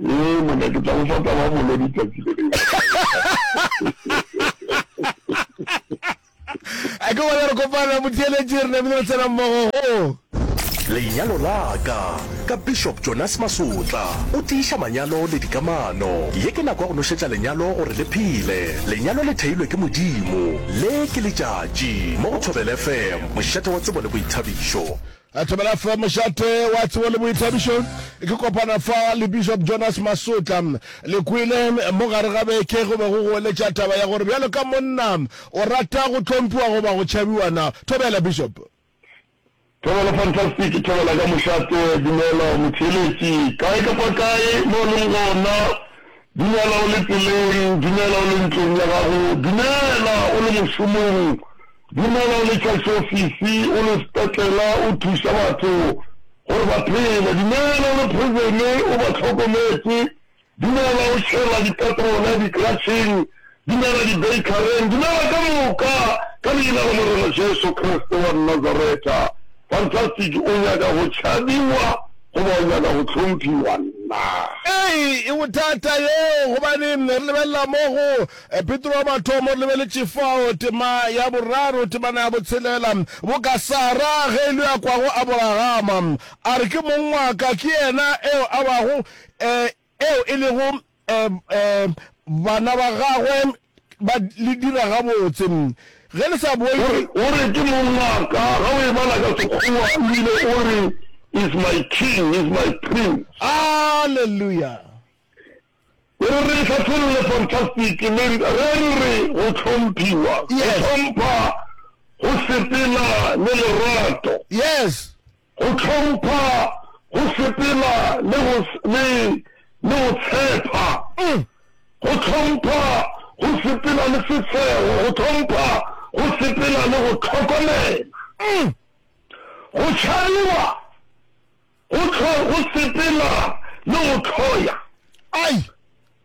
Ee, monna, ke tla go fa taba ya molodi tsatsi le lengwe. a ke gona re kopana motheeletše re namile re tsena mmogo go lenyalo la ka ka bishop jonas masotla o tiiša manyalo le dikamano ye ke nako ya go nošetša lenyalo gore le phele lenyalo le theilwe ke modimo le ke letšatši mo go thobel fm mošate wa tsebo le boithabišo A thobela fa mošate wa tsebo le boithabišo ke kopana fa le Bishop Jonas Masotla. Le kwele mo gare ga beke go be go goeletša taba ya gore bjalo ka monna o rata go tlhomphiwa goba go tšhabiwa na. Thobela Bishop. Thobela fantastic, thobela ka mošate. Dumela motheeletši, kae kapa kae mo o leng gona. Dumela o le tseleng, dumela o le ntlong ya gago, dumela o le mošomong. Dumela Letšatšofisi o le sepetlela o thuša batho gore ba phele Dumela o le prisone o ba hlokometše Dumela o tšhela dipetrola dikratšheng Dumela dibeikareng Dumela ka moka ka leina la Morena Jesu Kriste wa Nazareta Fantastic o nyaka go tšhabiwa goba o nyaka go hlomphiwa? Nna. Ee, e bothata yoo gobane re lebelela mo go Petro wa mathomo re lebeletše fao, tema ya boraro, temana ya botshelela, boka Sara ge e le yo a kwago Aboragama, a re, Ke mong wa ka, ke yena eo a bago, eh, eo e lego, eh, eh, bana ba gagwe ba le dira gabotse, ge le sa bone. O re, Ke mong wa ka, ge o e bala ka Sekgowa, o bile o re, He's my King, He's my Prince. Aleluya! O re re ihlahlolole fantastic le re re re go hlomphiwa, go hlompha, go sepela le lerato. Yes. Go hlompha, go sepela le go le le go tshepa. Go hlompha, go sepela le setshego, go hlompha, go sepela le go hlokomela. Go tšhabiwa. Go hlwa go sepela le go hloya. Ai!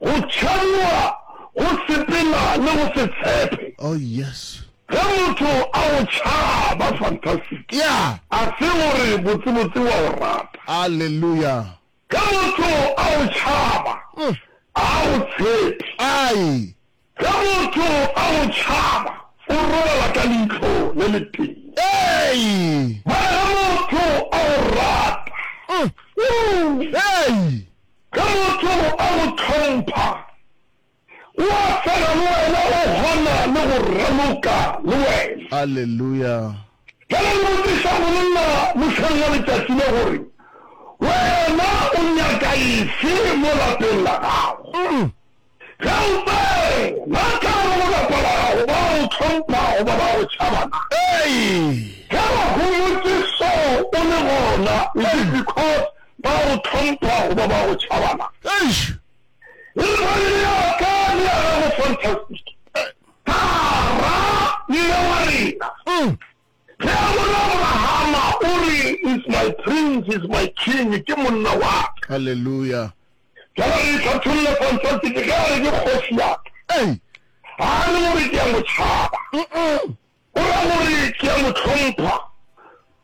Go tšhabiwa go sepela le go se tshepe. Oh, yes. Ge motho a go tšhaba, fantastic, Yeah. a se gore botsebotse wa go rata. Alleluia. Ge motho a go tšhaba, ga a go tshepe. Ai! Ge motho a go tšhaba, o robala ka leihlo le letee. Mara ge motho a go rata, ge motho a go hlompha, o a fela le wena, o kgona le go raloka le wena. Aleluya! Bjale le botšiša monna mohleng wa letšatši le gore, Wena o nyaka efe mo lapeng la gago? Ge o tsena ka gare go lapa la gago, ba go hlompha goba ba go tšhaba na? Ge ba go ngotše so o le gona, is it because ba go hlompha goba ba go tšhaba na? Eish! Re re, Le ya ka le ya gago fantastic. Tara, mme wa rena. Ge a bona Abrahama, o re, He's my prince, he's my king, ke monna wa ka. Haleluya! Bjale re hlatholle Fantastic ge a re, Ke kgoši ya ka. Ga a re gore ke a mo tšhaba. O ra gore, Ke a mo hlompha.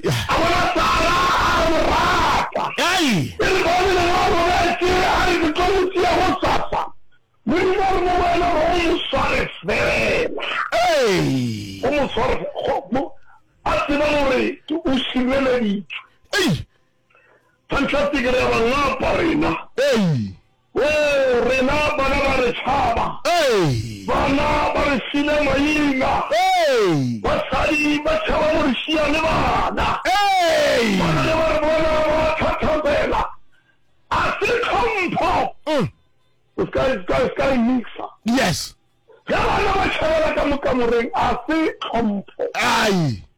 A bona Sara, a re, Mogwagwa, e re bone wena o robetše, a re, ke tlo mo tšea gosasa. Modimo a re, mo wena go mo sware feela. Go mo sware feela. A tseba gore o šireleditšwe. Fantastic, re a ba ngapa rena. Woo, rena bana ba re tšhaba. Bana ba re file maina. Basadi ba tšhaba go re šiya le bana. Bana ge ba re bona ba a thathapela. A se tlhompho. O se ka, se ka e mixa. Ge bana ba tšhabela ka mo kamoreng, a se tlhompho.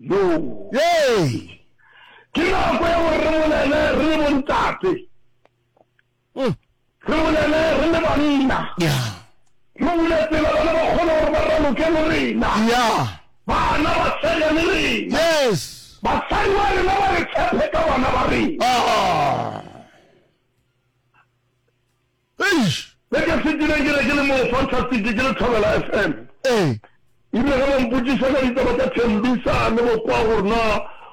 Yey! Ke nako ya gore re bolele re le bontate. Mm. Re bolele re le banna. Yeah. Re bule tsela bana ba kgone gore ba raloke le rena. Yeah. Bana ba tshega le rena. Yes. Basadi ba rena ba re tshephe ka bana ba rena. Ah. Eish! Se ke se kileng ke be ke le moo Fantastic ke le Thobela FM. Ee. Ebile ge ba mpotšiša ka ditaba tša Thembisa le bo kwa gore na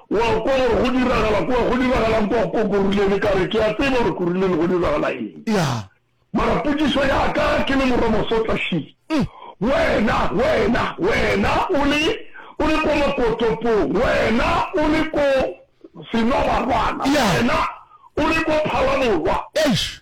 o a kwa gore go diragala kwa, go diragalang kwa ko Kuruleni ka re ke a tseba gore Kuruleni go diragala eng. Ya. Mara potšišo ya ka ke le Morwa Mosotla Shee, wena, wena, wena o le, o le kwa Makotopong, wena o le ko Senobarwana, wena o le ko Phalaborwa. Eish!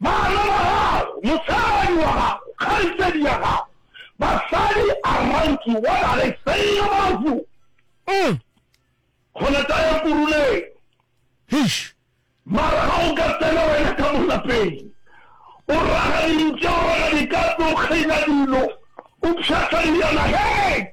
Bana ba gago, mosadi wa gago, kgaetšedi ya gago, basadi around you, what are they saying about you? Umm. Gona tla ya kuruleng. Heish. Mara ga o ka tsena wena ka mo lapeng, o raga dintše, o raga dikatse, o kgaina dilo, o pšhatla dilwana, hei!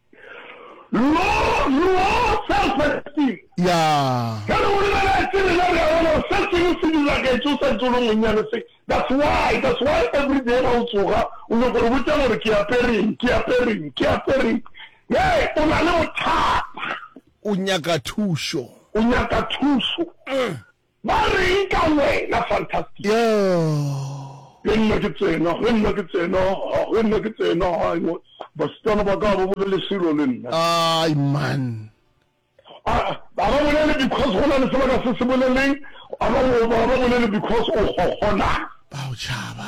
Low self esteem. Ya. Ge re go lebeletše rena re a bona gore se sengwe se diragetše o sa ntše o le monnyane se that's why that's why everyday ga o tsoga o nyoko gore botša gore ke apereng ke apereng ke apereng hee o na le bothata o nyaka thušo o nyaka thušo. Ba reng ka wena, Fantastic? Yooh! Ge nna ke tsena, ge nna ke tsena, ha, ge nna ke tsena, hai, wo, basetsana ba ka ga ba bolele selo le nna. Ai, man! A, a ba bolele because go na le se ba ka se se boleleng, a ba, a ba bolele because o kgokgona. Ba go tšhaba.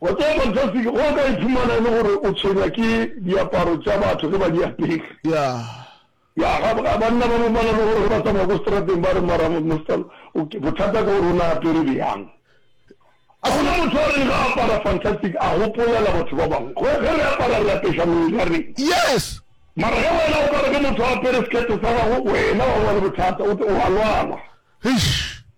Wa tseba fantastic ge o ka iphumana e le gore o tshwenywa ke diaparo tša batho ge ba di apere. Yeah. Ya ga banna ba bangwe ba na le gore ge ba tsamaya ko strateng ba re mara Mr. Bothata ke gore o ne a apere bjang. A gona motho a reng ga apara fantastic a gopolela batho ba bangwe. Ge ge re apara re apeša mebele ya rena. Yes. Mara ge wena o ka re ge motho a apere skirt sa gago wena wa ba le bothata o a lwala. Eish.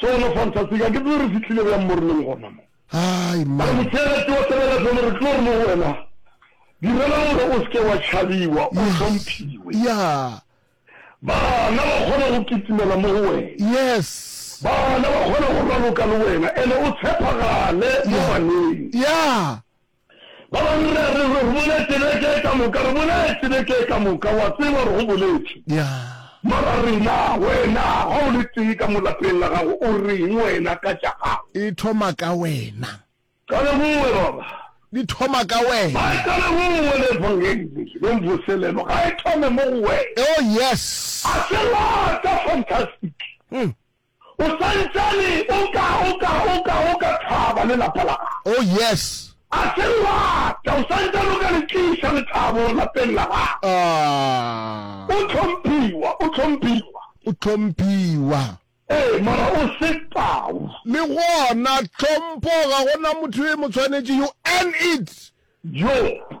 Sona Fantasika, ke tsebe re fihlile bjang mo re leng gona mo. Ai, mma. A re, Motšeeletši wa Tabernakhele, re tlo re mo go wena, Direla gore o se ke wa tšhabiwa, o hlomphiwe. Yeah. Bana ba kgona go kitimela mo go wena. Yes. Bana ba kgona go raloka le wena, ene o tshepagale mo baneng. Yeah. Ba bangwe re a re, Re bone tseneke ka moka, re bone tseneke ka moka, o a tseba, re go boletše. Ya. Mara rena, wena, ga o le tee ka mo lapeng la gago, o reng wena ka tša gago? E thoma ka wena. Qale go we, baba. Di thoma ka wena. Ba e qale go we, le Evangeli, le Mvoselelo, ga e thome mo go wena. Oh, yes. A se lata, fantastic. O swantsane o ka, o ka, o ka, o ka thaba le lapa la gago. Oh, yes! A se le rata, o swantsane o ka le tliša lethabo lapeng la gago. Ah! O hlomphiwa, o hlomphiwa. O hlomphiwa. Ee, mara o se tau. Le gona, tlhompho ga go na motho yo e mo tshwanetšego, and it. Job.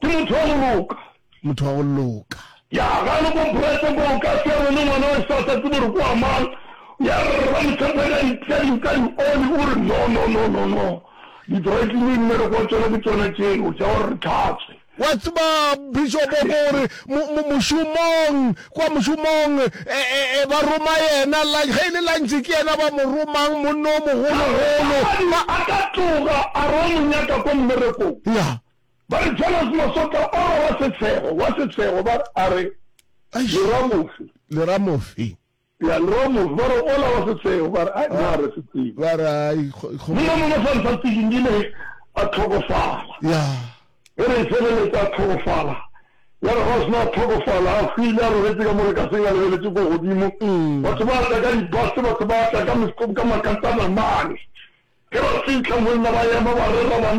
Ke motho wa go loka. Motho wa go loka. Ya ga le komporetse ko o ka se re le ngwana wa sa sa tsebe gore ko wa mang. Ya rra Motlhanthane a di tla di ka di oli o re no no no no no di dry clean ne re kwa tsona ke tsona tseo tsa gore re tlhatswe. Wa tseba Bishop o ko re mošomong kwa mošomong ba roma yena lunch ge e le lunch ke yena ba mo romang monna o mogolo golo. Magadi a ka tloga a re o mo nyaka ko mmerekong. Ya. Ba re, Jonas Mosotla o re wa Setshego, wa Setshego, ba a re, Eish! Leramofi. Leramofi. Ya, Leramofi, ba re, ola wa Setshego, ba re, Ai, naa re se tsebe. Ba re, Ai, kgo, kgo. Monna mongwe fa Ntsatsing di le a tlhokofala. Ya. Ge re e feleletša a tlhokofala, ya re ge a sena a tlhokofala, a hwile a robetše ka mo lekaseng a lebeletše ko godimo, batho ba tla ka dibase, batho ba tla ka, ka makatana mane. Ge ba fihla monna ba ema ba rera banna,